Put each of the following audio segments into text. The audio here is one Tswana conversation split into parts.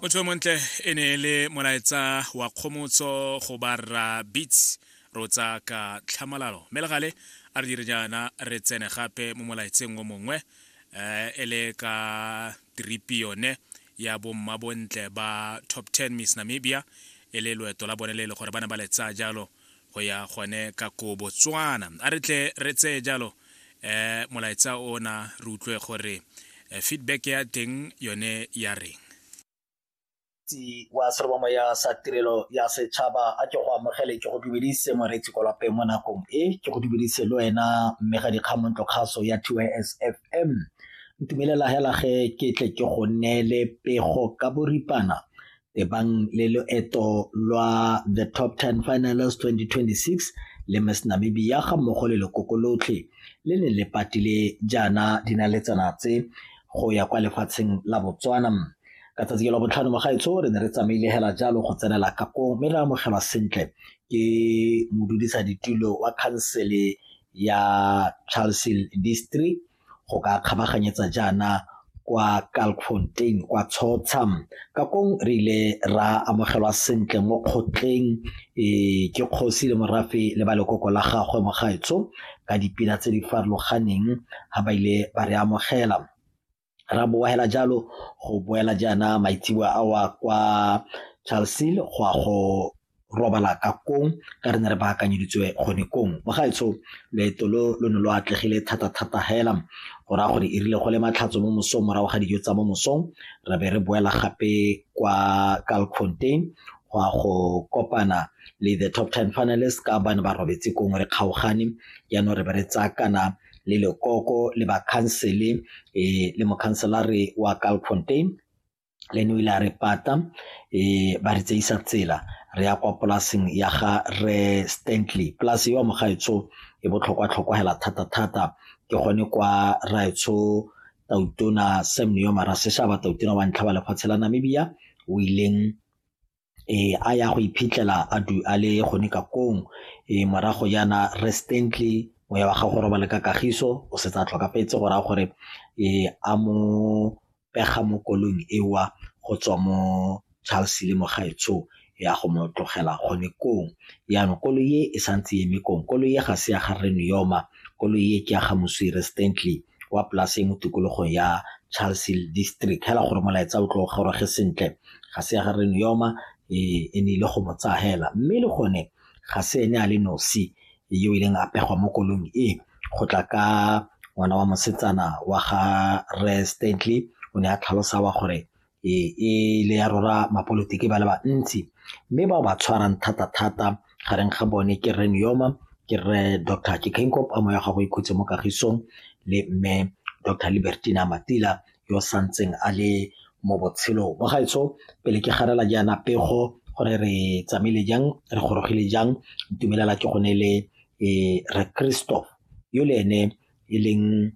motho montle e ne e le molaetsa wa kgomotso go barra beats rotsa ka tlhamalalo mme le gale a re dire jaana re tsene gape mo molaetseng o mongwe um e le ka tripi yone ya bomma bontle ba top 10 miss namibia e le loeto la bone le e le gore ba ne ba le tsaya jalo go ya gone ka ko botswana a re tle re tseye jalo eh molaetsa ona re utlwe gore eh, feedback ya teng yone ya reng moreetsi wa serobamoya sa tirelo ya setšhaba a ke go amogele ke go dumedise moreetsi ko lapeng mo nakong e ke go dumedise le wena mme ga dikgamontlo kgaso ya tsfm ntumelela hela ge ke tle ke go neele pego ka boripana ebang le loeto lwa the top 10 finals 2026 le miss namibia ga mmogo le lekoko lotlhe le ne le patile jaana dinaletsana tse go ya kwa lefatsheng la botswana ka tsatsi ke la botlhano mo gaetsho re ne re tsamaile hela jalo go tsenela kako mme re amogelwa sentle ke modudisa ditulo wa khansele ya charlesel district go ka kgabaganyetsa jaana kwa Kalkfontein kwa Tshotsha ka kong re ile ra amogelwa sentle mo kgotleng e ke kgosi le morafe le ba lekoko la gagwe mogaetsho ka dipina tse di farologaneng ga ba ile ba re amogela ra boela jalo go boela jaana maitseboa awa kwa Charlesville go a go robala ka kong ka re ne re baakanyeditswe gone kong bagaetsho leeto lo lo ne lo atlegile thata-thata hela go raya gore e rile go le matlhatso mo mosong morago ga dijo tsa mo mosong re be re boela gape kwa calcontain go a go kopana le the top ten finalist ka ba ne ba robetse kong re kgaogane jaanong re be re tsaya kana le lekoko le bakhansele um le mokhanselare wa calcontain le ene o ile a re pata ba re tseisa tsela re ya kwa polaseng ya ga re Stanley polase yo mo gaetsho e botlhokwa tlhokwa hela thata thata ke gone kwa raetsho tautona Sam Neo Maraseshaba tautona wa ntlha wa lefatshe la Namibia o ileng a ya go iphitlhela a du a le gone ka kong e morago jaana recently moya wa gago robale ka kagiso o setse a tlhokafetse go raya gore e a mo pega mo kolong ewa go tswa mo Charles le mogaetsho ya go mo tlogela gone kong yaanong koloi e e santse eme kong koloi e ga se ya ga rre Niyoma koloi e ke ya ga moswi recently wa polase mo tikologong ya Charles District hela gore molaetsa o tlo goroge sentle ga se ya ga re Neoma e, e ne ile go mo tsaya hela mme le gone ga se ene a le nosi yo o ileng a pegwa mo kolong e go tla ka ngwana wa mosetsana wa ga re stantley o ne a tlhalosa wa gore e, e le ya rora mapolotiki ba le bantsi mme bao ba tshwarang thata-thata gareng ga bone ke re neoma ke re dr kikenkop a moya ga go ikhutse mo kagisong le mme dr libertina matila yo o santseng a le mo botshelong mo gaetsho pele ke garela jaana pego gore re tsamaile jang re gorogile jang ntumelela ke gone le e re kristo yo le ene e leng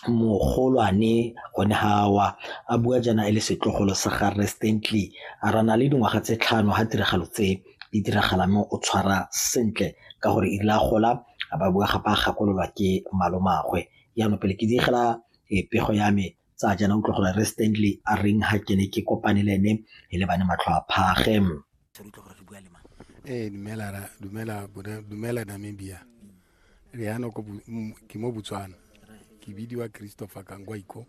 mogolwane gone gawa a bua jaana e le setlogolo sa ga restently a rana le dingwaga tse tlhano ga tiragalo tse di diragala mo o tshwara sentle ka gore e rile a gola a ba bua gape a gakololwa ke malomagwe jaanong pele ke digela e pego ya me tsa jana utlwa gore re Stanley a reng ha ke ne ke kopane le ene e le bane matlho a phage re utlwa gore re bua le mang ee dumela ra dumela dumela Namibia re yana ko ke mo Botswana ke bidiwa Christopher Kangwaiko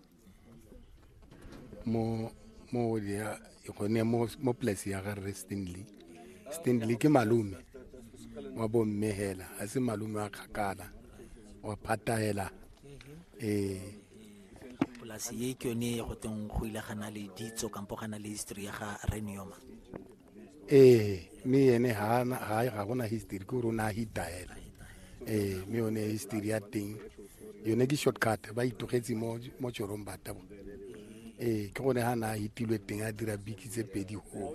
mo mo ya gone mo mo place ya ga re Stanley Stanley ke malome wa bomme hela a se malome wa kgakala wa phatahela ee polasi e ke yone go teng go ile gana le ditso kampo gana le history ya ga renioma ee mme ene ga gona history ke gore o ne a hita hela ee mme yone history ya teng yone ke shortcut ba itogetse mo tšorong batabo ee ke gone ga na a hitilwe teng a dira biki tse pedi go